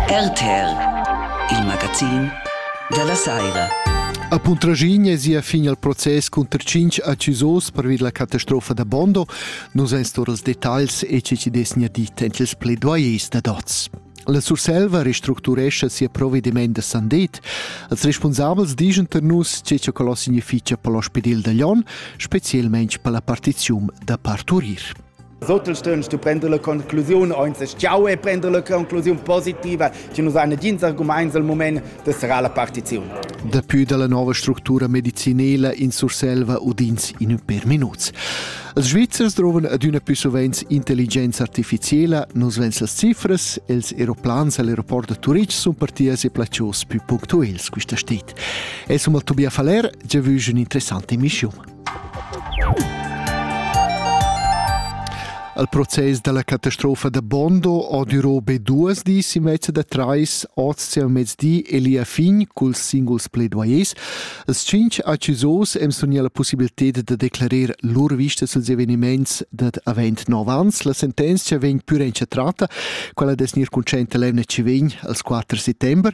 RTL, il magazin dalla saira. A Puntraschigna è sia fin al process cunter cinc accusos pervi la catastrofa da Bondo. Nus ein stor els detagls e che ci desnia dit en ils pledoyers da dots. La Surselva restructurescha sia provediment da Sandet. Els responsabels digen per nus che che quello significa per l'ospedil da Lyon, specialmente per la partizium da parturir. Als auters stünnst du prender la conclusiun, o ins schau e prender la conclusiun positiva, che nus han nagins argumaints al moment da serrar la partiziun. Dapü dalla nova structura medicinela in Surselva udins in ün per minuts. Els Svizzers drovan adüna più sovents intelligenza artificiela, nus vens las cifras, els aeroplans all'aeroport da Turitg sun partias e placios più punctuels quista stit. Es hum al Tobias Faller, giavüsch ün interessante emissiun. Al process dalla catastrofa da Bondo ho durò be duas dis e mezza da trais oz al mezdi e lia fin culs singuls pledoyers. Els tschinch accusos em sugna la possibilità da declarer lur vista suls eveniments dad avent nov ans. La sentenzia vegn pür entschatrata, quella des gnir concenta l'emna ci vegn als 4 settember.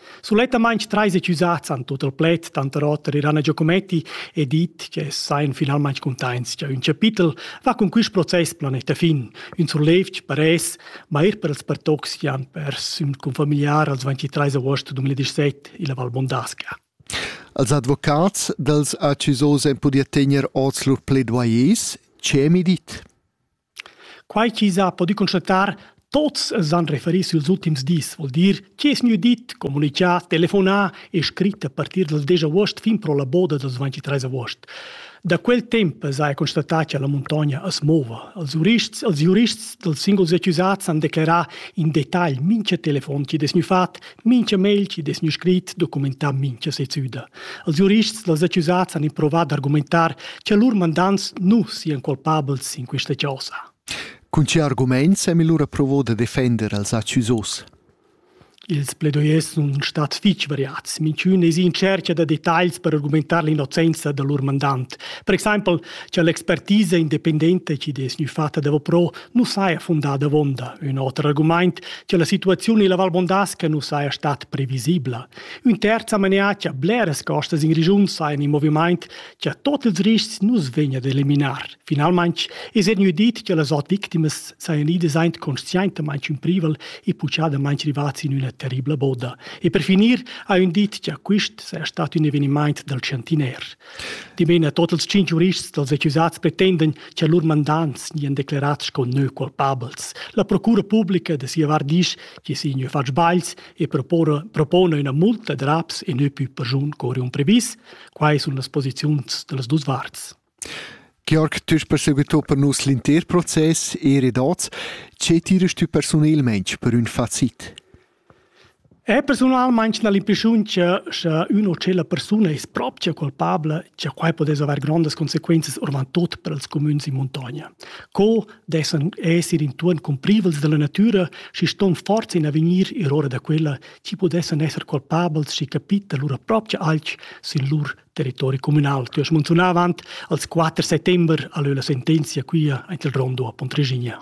Sulettamain trais accusats han tut il pled tanter oter Irana Giacometti e dit che sajan finalmain cuntaints che ün chapitel va cun quist process planeta fin, ün surlevg per es, ma eir per els pertocs chi han pers ün confamiliar als 23 agost 2017 illa Val Bondasca. Als advocats dels accusos en podia tegner oz lur pledoyers, che mi dit? Quai chi s'ha pudü constatar, tuots s'han referi süls ultims dis, voul dir chi es gnü dit, comunichà, telefonà e scrit a partir dal desch avuost fin pro la boda dals 23 avuost. Da quel temp s'haja constatà cha la muntogna as mouva. Els giurists els giurists dals singuls accusats han declerà in detagl mincha telefon chi'd es gnü fat Mincha mail chi'd es gnü scrit documentà mincha sezüda. Els giurists dals accusats han improvat d'argumentar cha lur mandants nu sian culpabels in quista chosa. Cun che argumaints hem lura provo da defender als accusos? Ils pledoyers sun stats fich variats. Minchün es in tschercha da detagls per argumentar l'innocenza da lur mandant. Per exaimpel cha l'expertisa independenta chi'd es gnü fatta davo pro nu saja fundà davonda ün oter argumaint cha la situaziun illa Val Bondasca nu saja stat previsibla. Ün terz amenà cha bleras costas in regiun sajan in movimaint cha tot ils riscs nu's vegna d'eliminar. Finalmaing es gnü dit cha las ot victimas sajan idas aint conscientamaing ün privel e puchadamaing rivats in üna terribla boda. E per finir ha ün dit cha quist saja stat ün evenimaint dal chantiner. Dimena tot ils cinc giurists dals accusats pretenden che lur mandants nian declerats sco neu culpabels. La procura publica de sia vart disch che si neu fatg sbails e propone, propone una multa de raps e neu più perjun cori un previs. Quai sun las posiziuns de las dus varts. Georg, tu hast perseguito per nus l'inter proces e redats. Ce tirest du personelmente per un facit? È persunalmaing gnà l'impreschiuntscha cha üna o tschella persuna es propcha culpabla cha quai pudess avair grondas consequenzas orvant tuot per ils cumüns in muntogna. Co dessan esser intuorn cumprivels da la natüra, schi ston forza in avegnir ir ora da quella chi pudessan esser culpabels schi capita lura propcha alch sün lur territori cumünal. Tü hast munzunà avant als 4 settember a lö la sentenzia quia aint il Rondo a Pontregigna.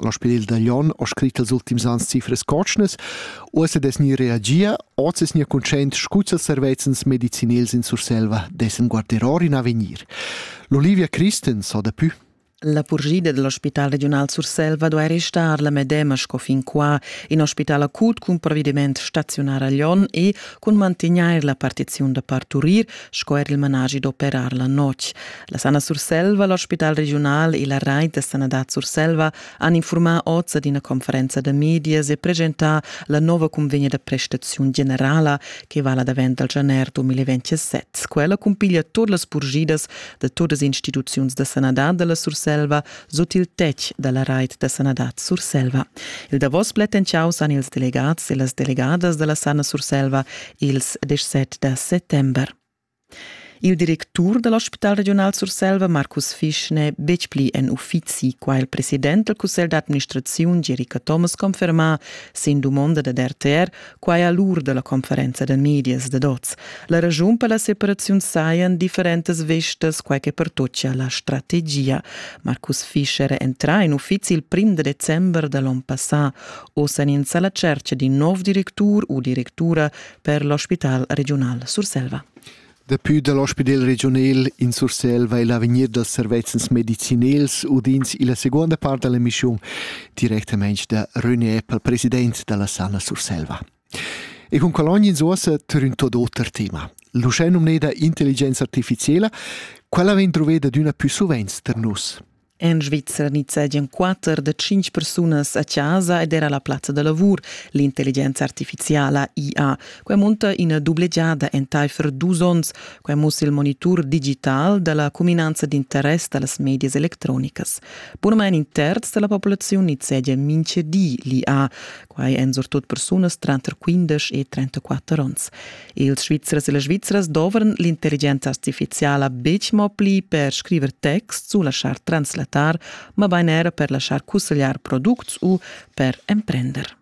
L'ospedel da Lyon ha scrit els ultims ans cifras cotschnas. Uossa des ni reagia, oz es ni conscient scuts als servezzens medicinels in Surselva dessen guarderor in avegnir. L'Olivia Christens ha dapü La purgida dell'ospital regional Surselva duai restar la medema sco fin qua in ospital acut cun provvediment staziunar a Lyon e cun mantegnair la partiziun da parturir sco er il managi d'operar la notg. La Sana Surselva, l'ospital regiunal e la rait da sanadad Surselva han informà oz ad ina conferenza da medias e presentà la nova convegna da prestaziun generala che vala davent dal gener 2027. Quella cumpiglia tut las purgidas da todas las instituziuns da sanadad da la Surselva sut il tetg da la rait da sanadad Surselva. Il davos plätten ciaus han ils delegats e las delegadas da la Sana Surselva ils 17 da settember. Il directur da l'ospital regiunal Surselva Markus Fisch n'è betg pli en uffizi, qua è il president del cussegl d'administraziun Jerica Thomas confermà sin dumonda dad RTR, quai a l'ur da la conferenza da medias dad oz. La raschun per la separaziun sajan differentas vestas, quai che pertochia la strategia. Markus Fisch era entrà in uffizi il prim da december da l'onn passà. Oz èn ins a la tschercha d'in nov directur u directura per l'ospital regiunal Surselva. Daplü dal ospidel regiunal in Surselva e l'avegnir dals servezzens medicinals udins illa seguonda part da l'emissiun directamaing da René Eppel, president da la Sana Surselva. E con cologna in suossa turn tot oter tema. L'uschè nomneda intelligenza artificiela, quella vegn troveda d'üna pü suvent tar nus. En Svizra nizzegian quatter da tschintg persunas a chasa ed era la plazza da lavur, l'intelligenza artifiziala IA. Quai munta ina dublegiada entaifer dus onns. Quai mussa il monitur digital da la cuminanza d'interess da las medias electronicas. Bunamain in terz da la populaziun nizzegia mintga di l'IA. Quai èn surtut persunas tranter 15 e 34 onns. Ils Svizzers e las Svizras dovran l'intelligenza artifiziala betg mo pli per scriver texts u laschar translatar, mabain era per laschar cussegliar products u per emprender.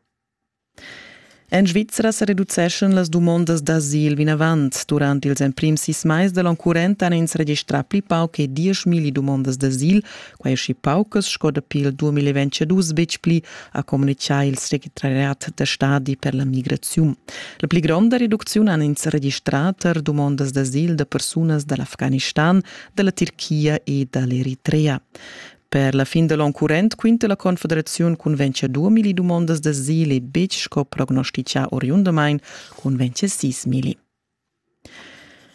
En Svizra sa reduceschan las dumondas d'asil vinavant. Durant ils emprims sis mais da l'onn current han ins registrà pli pauc che 10.000 dumondas d'asil, Quai schi paucas sco dapi il 2022 betg pli, ha communitgà il secretariat da stadi per la migraziun. La pli gronda reducziun han ins registrà tar dumondas d'asil da persunas da l'Afghanistan, da la Tirchia e da l'Eritrea. Per la fin da l'onn current quinta la Confederaziun cun vencer 2000 dumondas d'asil e betg sco prognostitgà oriundamain cun vencer 6000.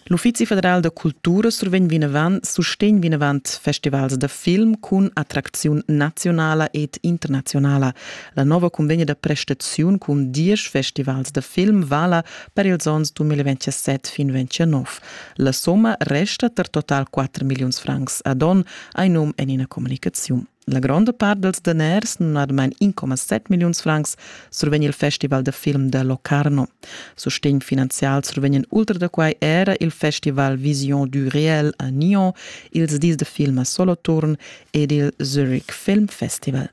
L'Uffizi federal da cultura survegn vinavant sustegn vinavant festivals da film cun attracziun naziunala ed internaziunala. La nova cunvegna da prestaziun cun diesch festivals da film vala per ils onns 2027 fin 2029. La somma resta per total 4 milliuns francs ad onn, ha num en ina communicaziun. La gronda part dals daners, numnadamain 1,7 milliuns francs, survegn il festival da film da Locarno. Sustegn finanzial survegnan ultra da quai era il festival Vision du Réel a Nyon, ils dis da film a Soloturn ed il Zurich Film Festival.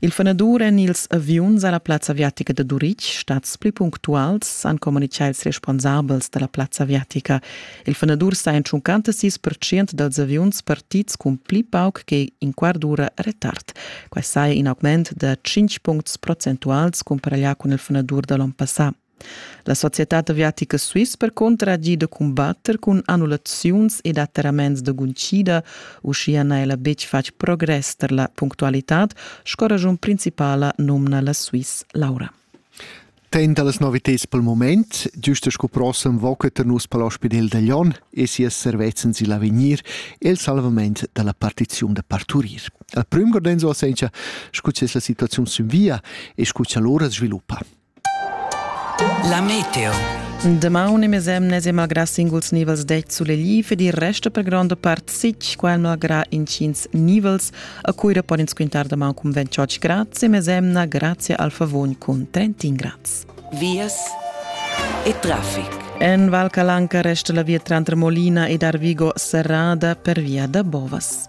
Il fenadur en ils aviuns a la plazza aviatica da Turitg, stads pli punctuals, han communitgà ils responsabels da la plazza aviatica. Il fenadur sta en tschuncanta sis percent dals aviuns partids cun pli pauc che in quart d'ura retard. Quai saja in augment da 5 puncts procentuals cumparaglià cun il fenadur da l'onn passà. La societad aviatica Swiss percunter ha gì da cumbatter cun annullaziuns ed atterraments da guntgida. Uschia n'ha ella betg fatg progress tar la punctualitad, sco ragiun principala numna la Swiss Laura. Ten da las novitads pel moment, giusta sco prossem voca tar nus per l'ospidel da Glion e sias servezzan sil avegnir e il salvament da la partiziun da parturir. Il prüm gordenzo a sencha, scu c'es la situaziun sün via e scu cha l'ora sviluppa. La meteo. Damaun e mesemnes e malgrà singuls nivels deit sulegli ed il resto per gronda part sic, quel malgrà incins nivels a cui pon ins quintar damaun cun 28 grads e mesemna grazie al favon cun 31 grads. Vias e traffic. En Val Calanca resta la via trantre Molina ed Arvigo serrada per via da Bovas.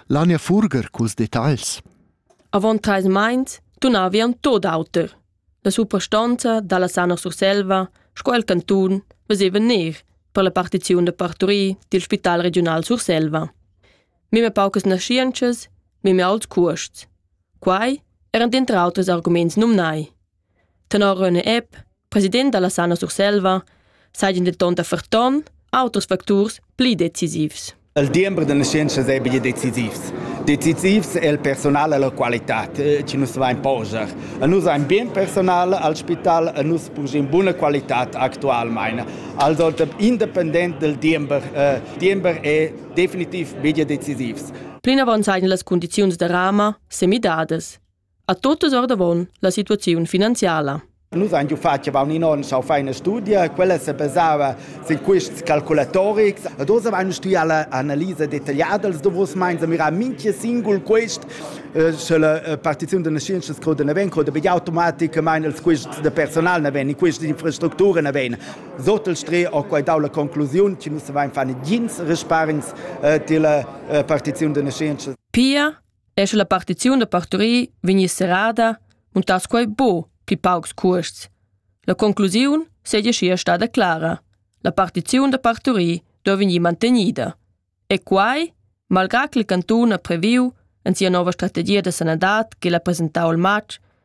L'Ania Furger culs detagls. Avon treis meins tunavi en tot auter. La suprastonza dalla Sana Surselva sco el cantun veseva ner per la partiziun da parturir dil Spital Regiunal Surselva. Mime paucas naschientschas, mime aults cuosts. Quai eran dentr auters arguments numnai. Tenor René Epp, president dalla Sana Surselva, seigien denton da ferton auters facturs pli decisivs. Il diember da nascentas ei bia decisivs. Decisivs è il personal e la qualitad eh, che nus vain poser. E nus ein bien personal al spital e nus purgim buna qualitad actualmente. Also independent del diember, eh, diember è definitiv bia decisivs. Plinavon seien las condiziuns da Rama semidadas. A totas ordavon la situaziun finanziala. Nus han giu fatg avon in onn sau feina studia, quella se basava sin quests calculatorics ed oz avevamo stuia la analisa detagliada dels davos meins a mirar minchia singul quest eh, sche la eh, partiziun da scienzias croda ne ven croda be automaticamein els quests de personal ne ven, queste infrastructure ne ven. Sottel stre ho quai dau la conclusiun che nus avevamo fare gins resparens eh, della partiziun da scienzias. Pia e sche la partiziun da parturir vegni serrada, muntass quei buc pli paucs cuosts. La conclusiun seigi scia stada clara. La partiziun da parturir do vegnir mantenida. E quai, malgrà che il cantun ha previu en sia nova strategia da sanadad che l'ha presentau il matg,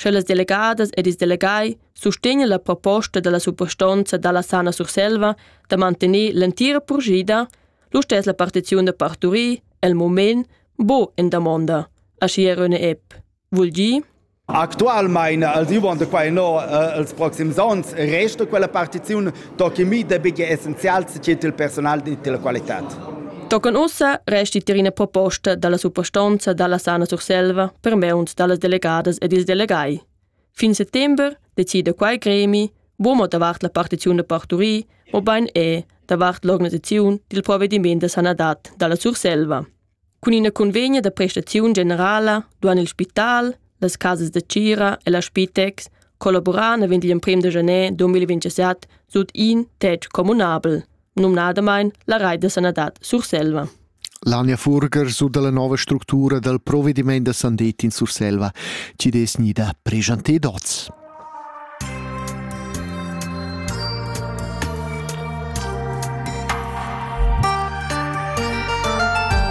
Sche las delegadas ed ils delegai sustegnan la proposta dalla suprastonza dalla Sana Surselva da mantener l'entira purschida, lu stess la partiziun da parturir el mument buca en damonda, aschia Röne Epp. Vul dir? Actualmein, als dumonda quai no, äh, els proxims onns, resta quella partiziun Tochen mi dabiglia essenzial secenter il personal e della qualitad. Tochen ussa resti tier ina proposta dalla suprastonza dalla Sana Surselva per meuns dallas delegadas ed ils delegai. Fin settember decida quai gremi, buomo davart la partiziun da parturi, o bein è davart l'organisaziun dil provvediment da sanadad dalla Surselva. Cun ina cunvegna da prestaziun generala duan il spital, las casas da tgira e la Spitex collaborar naven digl emprem da januar 2027 sut in tetg communabel, numnadamain la Reit da sanadad Surselva. L'Ania Furger sut la nova structura dal provediment da sandet in Surselva ci des nida prejanté dots.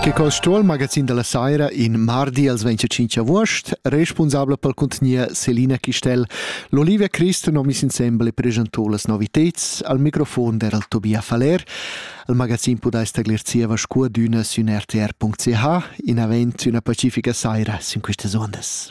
Che col stuol magazin della saira in mardi als 25 august, responsabla pel contenier Selina Chistel, l'Olivia Christ nomis insembel e presentou las noviteds al microfon der al Tobia Faller. Al magazin podais taglir zieva scua d'üna sün rtr.ch in avent üna pacifica saira sin quistas ondas.